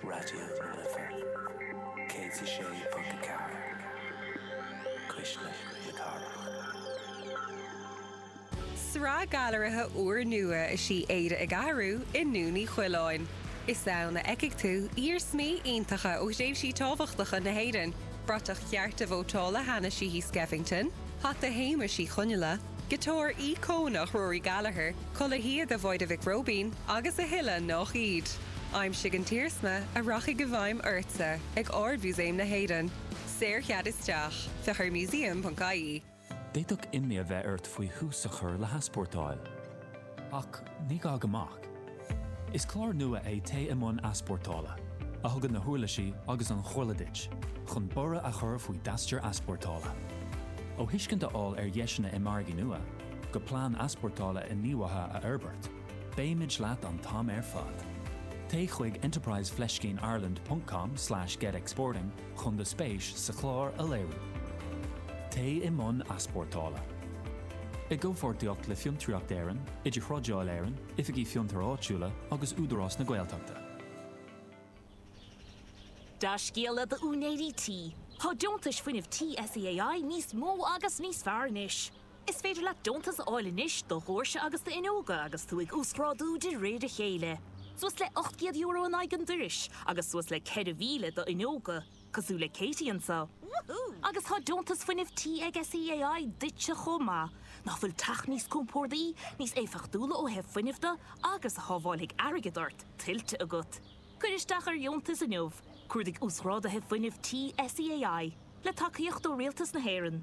Raidió na Life, 106.4, Cuisle na Cathrach. Sraith gailearaithe úrnua is í Éire ag Athrú i nDún Uí Choileáin. Is ann a fheicfidh tú iarsmaí iontacha ó thréimhsí tábhachtacha na hÉireann, bratach chearta vótála Hanna Sheehy Skeffington, hata Shéamuis Uí Chonghaile, Giotár íocónach Rory Gallagher, culaith shíoda Mháire Mhic Róibín agus a thuilleadh nách iad. Aimsigh an t-iarsma a rachaidh i bhfeidhm ortsa ag Ard-Mhúsaem na hÉireann. Saorchead isteach. Féach ar museum.ie. D'fhéadfadh imní a bheith ort faoi thús a chur le heaspórtáil. Ach ní gá go mbeadh. Is clár nua é Téigh i mbun Easpórtála, a thugann na huirlisí agus an chomhairle duit chun borradh a chur faoi d'aistear easpórtála. Ó thuiscint a fháil ar dheiseanna i margaí nua, go plean easpórtála inghníomhaithe a fhorbairt, beimid leat an t-am ar fad. Téigh chuig enterprise fleiscín ireland ponc com slash get exporting, chun do spéis sa chlár a léiriú. Téigh i mbun easpórtála. I gcomhpháirtíocht le Fiontraíocht Éireann, Idirthrádáil Éireann, Oifigí Fiontair Áitiúla agus Údarás na Gaeltachta. Dea-scéala d'úinéirí tí, Tá Deontais Fuinnimh Tí SEAI níos mó agus níos fearr anois! Is féidir leat deontas a fháil anois do dhoirse agus d'fhuinneoga agus tú ag uasghrádú de réir a chéile, suas le €800 in aghaidh an dorais agus suas le 4,000 do fhuinneoga, cosúil le Katie anseo. Agus tá Deontas Fuinnimh Tí ag SEAI duitse chomh maith! Ná fuil teach níos compordaí, níos éifeachtúla ó thaobh fuinnimh de agus a shábháilfidh airgead ort, tuillte agat? Cuir isteach ar dheontas inniu, cuardaigh Uasghráduithe Fuinnimh Tí SEAI, le tacaíocht ó Rialtas na hÉireann.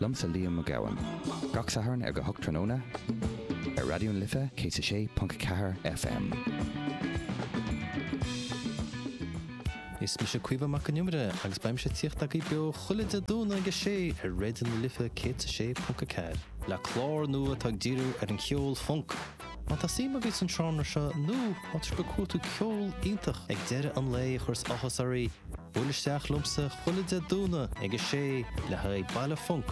Liomsa Liam Mac Gabhann. Gach Satharn ar go hocht tráthnóna ar Raidió na Life 106.4 FM. Is mise Caoimhe Mac an Iomaire agus beidh mise ag tíocht agaibh beo chuile Dé Domhnaigh ag a sé ar Raidió na Life 106.4. Le clár nua atá ag díriú ar an cheol func, Má tá suim agaibh san seánra seo nó má tá sibh ag cuartú ceol iontach ag deireadh an lae a chuireas áthas oraibh, buail isteach liomsa chuile Dé Domhnaigh ag a sé le haghaidh Baile Func.